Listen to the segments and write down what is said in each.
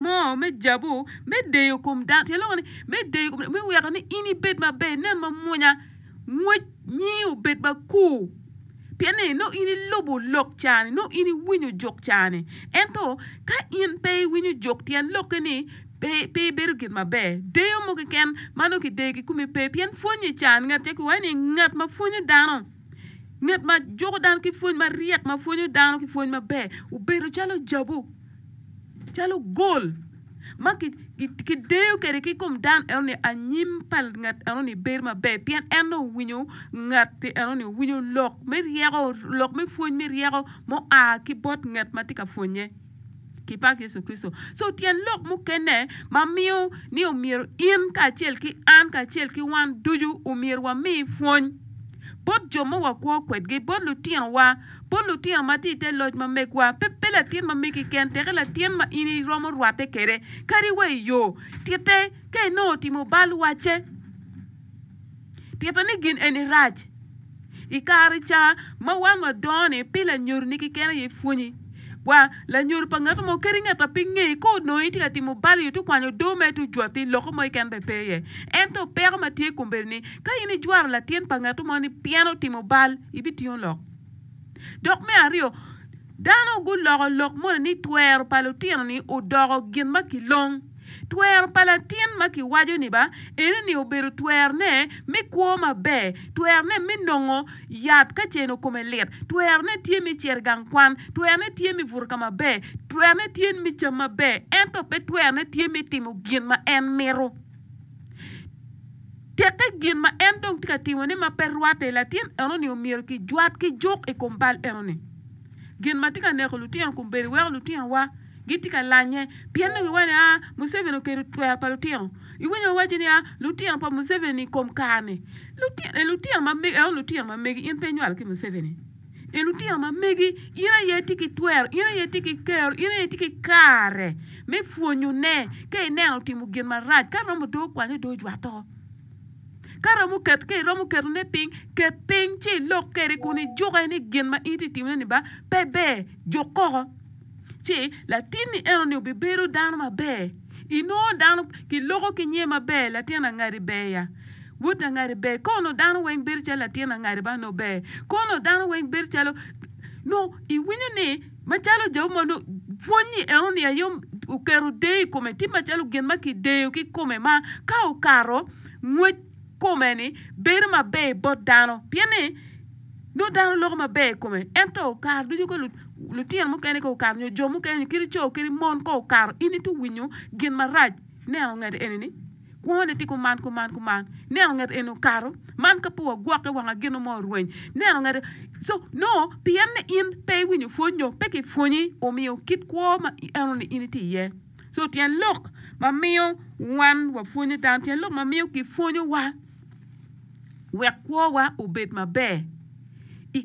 mo me jabu me deyo kom dano tye loko ni me deyo kom me weko ni in ibed maber inen mamwonya ngwec nyingi obed makur pien ni nongo in ilubo lok cani nongo in iwinyo jok cani ento ka in pe iwinyo jok tyen lokke ni pe pe ibedo gin maber deyo mo keken ma nongo kideyo ki komi pe pien pwonyo i can ngat aye kiwaco ni ngat ma pwonyo dano ngat ma juko dano ki pwony maryek ma pwonyo dano ki pwony maber obedo calo jabu calo gol ma kideyo kwede ki i kom dano enoni, anyim pa ngat enoni bedo maber pien en dong owinyo ngat enoni, owinyo lok me ryeko, lok me pwony me ryeko ma oa ki bot ngat ma tye ka pwonnye. Kipak Yecu Kricito. So tyen lok mukene ma miyo ni omyero in kacel ki an kacel ki wan ducu omyero wami pwony bot jo ma wakwo kwedgi, bot lutinowa. Bot lutino ma tye i te loc ma megwa, pe pe latin ma megi keken, teke latin ma in iromo rwatte kwede, kadi wa i yo. Titte ka inongo otimo bal wacce. Titte ni gin eni rac. I kare ca ma wan wadongo-ni, pile anyoroni keken aye pwonyi. Wa. Lanyodo pa ngat mo kadi ngat ma pe ingeyo ka onongo itye ka timo bal nyo tukwanyo odoo mere tujwati loko mo keken bene pe iye. Ento peko ma tye kun bedo ni ka in ijwaro latin pa ngat mo ni pien otimo bal, ibitingo lok. Dok me aryo, dano guloko lok moni ni twero pa lutino ni odoko gin ma kilong. Twero pa latin ma kiwaco-ni ba ene ni obedo twerone me kwo maber, twerone me nongo yat ka ceno kome lit, twerone tye me cito i gang kwan, twerone tye me buto ka maber, twerone tye me cam maber, ento pe twerone tye me timo gin ma en mito. Teke gin ma en dong tye ka timone ma pe rwatte, latin enoni omyero kijwat ki juk i kom bal enoni. Gin ma tye ka neko lutino kombeddi weko lutinowa. gitye ka lanye pien ni giwaco ni Museveni oketo twero pa lutino. Iwinyo wawaco ni lutino pa Museveni i kom kare-ni. Lutino eni lutino ma megi, eno lutino ma megi, in pe inywalo ki Museveni. Eni lutino ma megi, in aye itye ki twero, in aye itye ki kero, in aye itye ki kare me pwonyone ka ineno otimo gin marac. Ka romo dong okwanye dong ojwatte woko. Ka romo ket, ka iromo ketone piny, ket piny ci ilok kwede kun ijukke ni gin ma in itye ka timone-ni ba pe ber, juk koko. ci latinni enoni obibedo dano maber. Inongo dano kiloko ki nyer maber latin angadi ber ya, wod angadi ber. Kong onongo dano weng bedo calo latin angadi man nongo ber. Kong onongo dano weng bedo calo nongo iwinyo ni macalo Jehovah ma nongo pwonyi enoni aye oketo deyo i kome tye macalo gin ma kideyo ki i kome ma ka okato ngwec. kome ni bedo maber bot dano pien ni nongo dano loko maber i kome ento kare ducu ka lutino mukene ka okato nyo jo mukene nyo kadi co kadi mon ka okato in itye winyo gin marac ineno ngat eni ni kwo ne tye kuman kuman kuman ineno ngat eni okato man ka pe wagwokke wanga gino mo orweny ineno ngati so nongo pien ni in pe iwinyo pwony nyo pe kipwonyi omiyo kit kwo ma ineno ni in itye iye. So tyen lok ma miyo wan wapwonyo dano, tyen lok ma miyo kipwonyowa wek kwowa obed maber i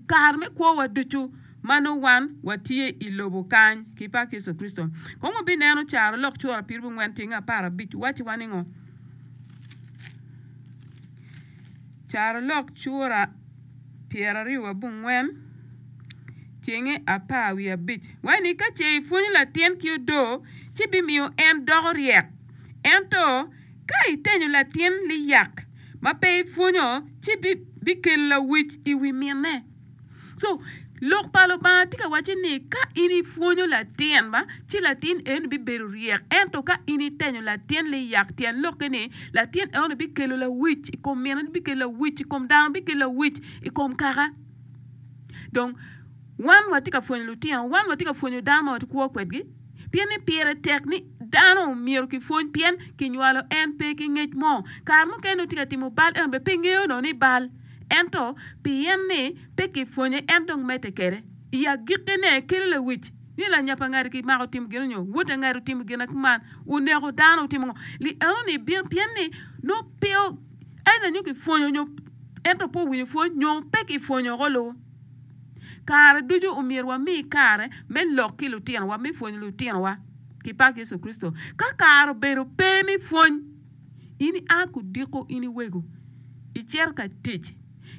kare me kwowa ducu ma nongo wan watye i lobo kany ki pak Yecu Kricito. Kong wabineno carolok cura pyerabongwen tyeng aparabic wacciwa ni ngo? Carolok cura pyeraryo wa bungwen cenge apar wiye abic waci ni ka ce i pwonyo latin ki odoo ci bimiyo en doko ryek ento ka i tenyo latin liyak ma pe i pwonyo ci bikelo lawic i wi mine. So lok pa Lubanga tye ka wacci ni ka in ipwonyo latin ma ci latin eno bibedo ryek ento ka in itenyo latin liyak tyen lokke ni latin eno bikelo lawic i kom mine bikelo lawic i kom dano bikelo lawic i kom kaka dong wan watye ka pwonyo lutino wan watye ka pwonyo dano ma watikwo kwedgi Pien ni pire tek ni dano myero kipwony pien kinywalo en pe ki ngec mo. Kare mukene nongo tye ka timo bal ento bene pe ngeyo onongo ni bal. Ento pien ni pe kipwonye en dong medde kwede. I agikkine, kelo lewic ni lanyapa ngati kimako timo gin nyo wote ngati otimo gin ma kuman, oneko dano, otimo ngo, li enoni bino pien ni nongo pe either nyo kipwonyo nyo ento pe owinyo pwony nyo pe kipwonyo ko lu. Kare ducu omyero wami kare me lok ki lutinowa, me pwonyo lutinowa ki pak Yecu Kricito. Ka kare obedo pe me pwony, in ia ki odiko in iwego, icito ka tic.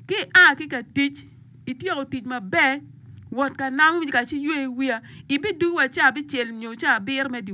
Ka ia ki ka tic, ityeko tic maber, wot ka namo ka ci ywe wiya, ibidwogi wa ca abicel nyo ca abiro me dyewor.